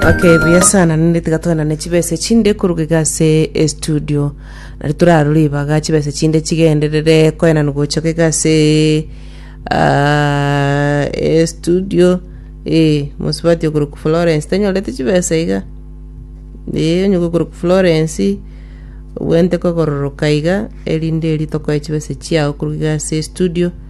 Okay, buya sana nende tiga twenane chibesa chinde koruga iga ase estudio nari torarore ibaga chibesa chinde chigenderere koenana gochoka iga ase ah, estudio eh, mosubati okoruka Florence tanyorete chibesa iga eh, onye gokoruka Florence obwente kogororoka iga erinde eri tokoe chibesa chiao koruga iga ase estudio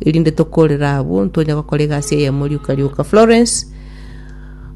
erinde tokorera abwo ntonye gokora egasi eyemo rioka rioka florence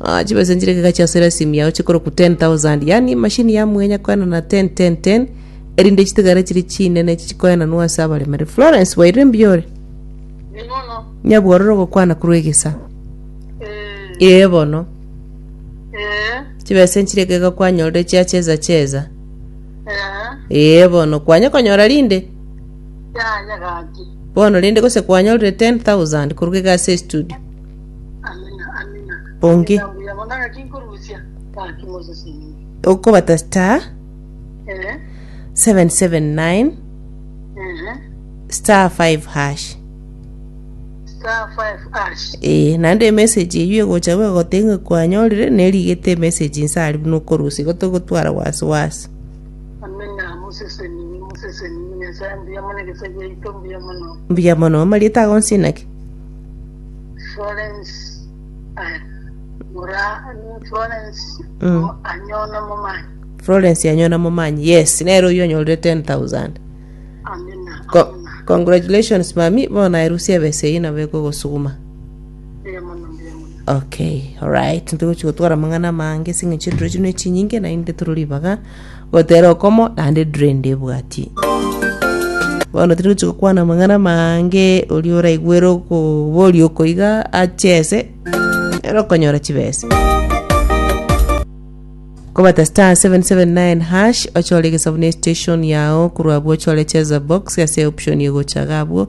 Ah, chibesa nchire kega chia sera simu yao chikoroku 10000 yani mashini ya mwenya koena na 10 10 10 erinde chitigare chiri chinene chichikoena nwa ase abaremere florence waire mbiore Nimono. nyabwororo gokwana korwa egesa Eh. ee bono Eh. chibesa nchire kega kwanyorire chia cheza cheza Eh. ee bono kwanye konyora rinde Yaya gaki. Bono rende gose kwanyorire 10,000 koruga iga ase estudio? Onge. Okobata star 779 star 5 hash. Ee, naende emessage eyio egocha igo egotebia ng'a kwanyorire, nerigete emessage inse aria buna okorusia igo togotwara wasi wasi. Amina, moseseni, moseseni, Nyasae mbuya mono egesa giaito, mbuya mono. Mbuya mono. Amarieta ago nse naki? Florence ah, mura mm, Florence Mm. mo- anyona momanyi Florence yanyona momanyi. Yes, nere oyo onyorire 10000. amina Co- amina congratulations mami, bona erusia ebesa eyi nabo ekogosuguma. Mbuya mono, mbuya mono. Okay, alright, ntogochi gotwara amang'ana amange ase eng'encho ediro chino echinyinge naende toro ribaga gotera okomo naende ediro ende ebwati bono tiri gochi gokwana amang'ana amange oria oraigwere okoboria okoiga achese nere okonyora chibesa kobata star 779 hash ochore egesabuni ya station yao korwa abwo ochore cheza box ase option egocha iga abwo